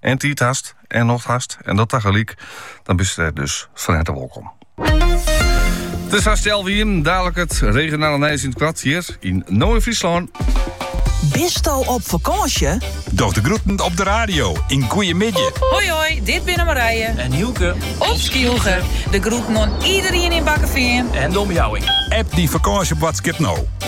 En tiid hast en nocht hast en dat tagelyk, dan bist er dus fan herte wolkom. It is hast healwei ien, dalik it regionale nijs yn it koart hjir yn No yn Fryslân. Bisto op fakânsje? Doch de groeten op de radio yn Goeiemiddei. Hoi hoi, dit binne Marije. En Hielke. Op Skylge. De groeten oan iderien yn Bakkefean en de omjouwing. App dyn fakânsjeboadskip no.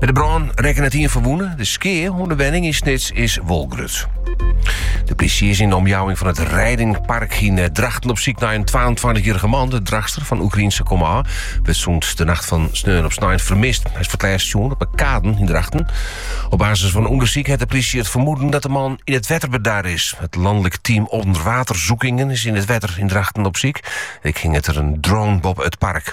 By de brân rekke net ien ferwûne. De skea oan de wenning yn Snits is wol grut. De plysje is yn de omjouwing fan it Reidingpark yn eh, Drachten op syk nei in 22-jarrige man. De Drachtster fan Oekraïense komôf wurdt sûnt de nacht fan sneon op snein fermist. Hy is foar it lêst sjoen op de Kaden yn Drachten. Op basis fan ûndersyk hat de plysje it fermoeden dat de man yn it wetter bedar is. It Landelijk Team Onderwaterzoekingen is yn it wetter yn Drachten op syk. Ek hinget der in drone boppe it park.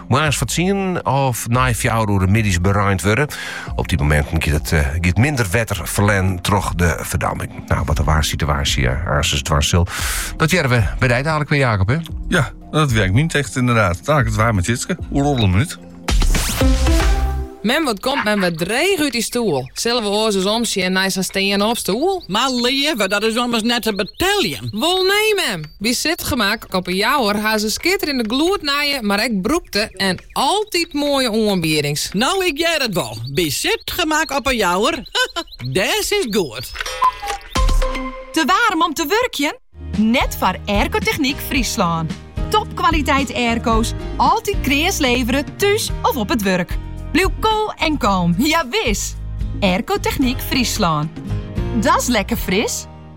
Moarns foar tsienen of nei fjouwer oere middeis bereind wurde. Op die momenten giet het eh, giet minder wetter verlen troch de verdamming. Nou, wat de waar situatie eh, aansens dwars zal. Dat jaren we bij die dadelijk weer, Jacob, hè? Ja, dat werkt niet echt inderdaad. Daar het waar met Jitske. Hoe roddel een minuut? Men wat komt men wat dreig uit die stoel. Zullen we oors eens omzien naar zijn steen op stoel? Maar liever, dat is anders net te beteljen. Wel nee, mem. By Sitgemak op 'e Jouwer ha se skitterende gloednije, mar ek brûkte en altyd moaie oanbiedings. No ik hear it wol, by Sitgemak op 'e Jouwer, dêr sitst goed. Te waarm om te wurkjen? Net foar Aircotechniek Fryslân. Topkwaliteit airco's, altyd kreas levere, thús of op it wurk. Bliuw koel en kalm, jawis! Aircotechniek Fryslân. Dat's lekker fris!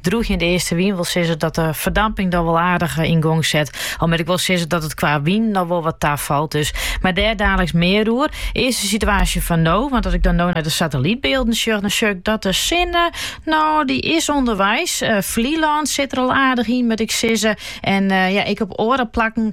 drûgjende eastewyn wol sizze dat de ferdamping dan wol aardich eh, yn gong set. Al moat ik wol sizze dat it kwa wyn dan wol wat tafalt. Dus. Mar dêr daliks mear oer. Earst de situaasje fan no, want as ik dan no nei de satellytbylden sjoch, dan sjoch ik dat de sinne, no dy is ûnderweis. Uh, Flylân sit der al aardich yn moat ik sizze. En eh, ja, ek op oare plakken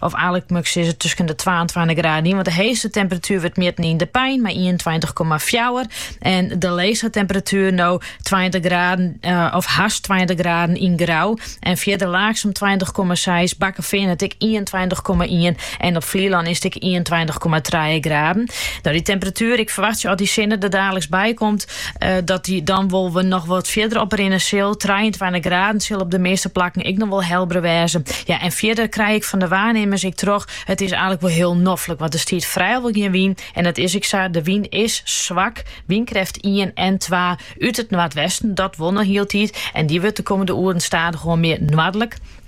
Of eigentlik moat ik sizze tusken de 22 graden yn, want de heechste temperatuer wurdt mjitten yn De Pein mei 21,4 en de leechste temperatuer no 20 graden eh, of hast 20 graden yn Grou en fierder Laaksum 20,6 Bakkefean hat ek 21,1 en op Flylân is it ek 21,3 graden. No, dy temperatuer, ik ferwachtsje as dy sinne der daliks by komt, dat dy dan wol we noch wat fierder oprinne sil. 23 graden sil op de meeste plakken ik nog wel helbre wêze. Ja, en fierder krij ik van de waarnemers ik troch. Het is eigenlijk wel heel noffelijk, want er stiet vrijwel geen wien. En dat is ik sa, de wien is zwak. Wienkreft 1 en 2 uit het noordwesten, dat won nog hieltijd. En die wordt de komende oeren stadig gewoon meer noordelijk.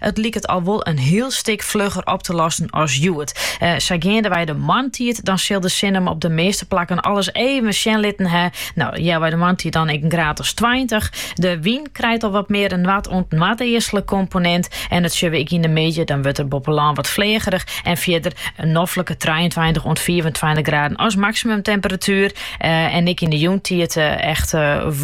It liket al wol in hiel stik flugger op te lossen as hjoed. Sa geandewei de moarntiid, dan sil de sin him op de measte plakken al ris even sjen litten hè. No, healwei de moarntiid dan ek in graad as tweintich. De wyn krijt al wat mear in noard- oant noardeastlike komponint en dat sjogge we ek yn de middei, dan wurdt er boppe lân wat fleagerich en fierder in noflike trijeentweintich oant fiifentweintich graden as maksimumtemperatuer. En ek yn de jûntiid echt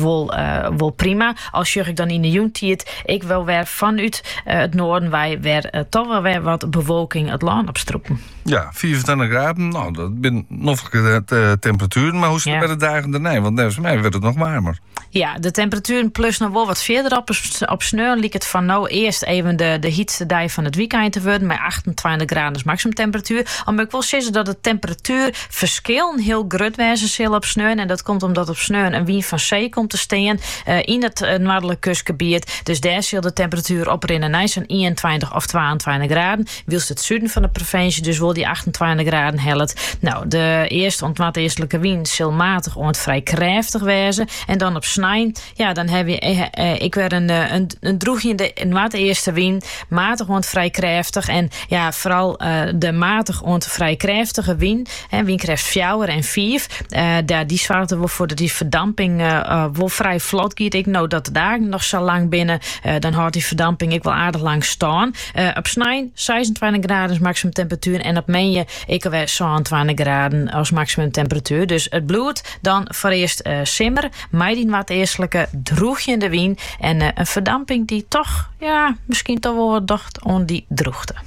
wol prima. Al sjoch ik dan yn 'e jûntiid ek wol wer fanút it noarden wei wer toch wol wer wat bewolking it lân op strûpen. Ja, 25 graden, nou, dat bin noflike temperaturen. Maar hoe zit het bij de dagen daarna? Want net mij werd het nog warmer. Ja, de temperaturen plus nog wel wat verder op. Op sneeuw liep het van nou eerst even de, de hietste dag van het weekend te worden. Met 28 graden is maximumtemperatuur. Omdat ik wil zeggen dat het temperatuurverschil heel groot wijzen zal op sneeuw. En dat komt omdat op sneeuw een wind van zee komt te staan. yn it noardlik kustgebiet. Dus dêr sil de temperatuer oprinne nei sa'n ienentweintich of twaentweintich graden. Wylst it suden fan de provinsje dus wol dy achtentweintich graden hellet. No, de east oant noardeastlike wyn sil maatich oant frij krêftich wêze. En dan op snein, ja, dan hawwe je ek wer in, in drûgjende noardeastewyn. Maatich oant frij krêftich. En ja, foaral de maatich oant frij krêftige wyn En wynkrêft fjouwer en fiif, dat dy soarget der wol foar dat dy ferdamping wol frij flot giet. Ek no dat de dagen noch sa lang binnen, dan hâldt dy ferdamping ek wol aardich lang stân. Op snein seisentweintich graden as maksimum temperatuer en op moandei ek alwer sânentweintich graden as maksimum temperatuer. Dus it bliuwt dan foarearst simmer mei dy noardeastlike drûgjende wyn en in ferdamping dy't toch, ja, miskien toch wol wat docht oan dy drûchte.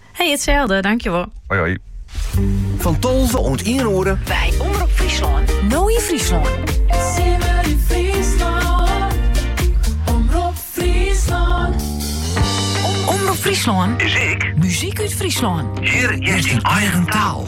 Hey, hetzelfde, dankjewel. Hoi hoi. Fan tolve oant 1 oere. By Omrop Fryslân. No yn Fryslân. Simmer yn Fryslân. Omrop Fryslân. Omrop Fryslân. Muzyk. Muzyk út Fryslân. Hjir is dyn eigen taal.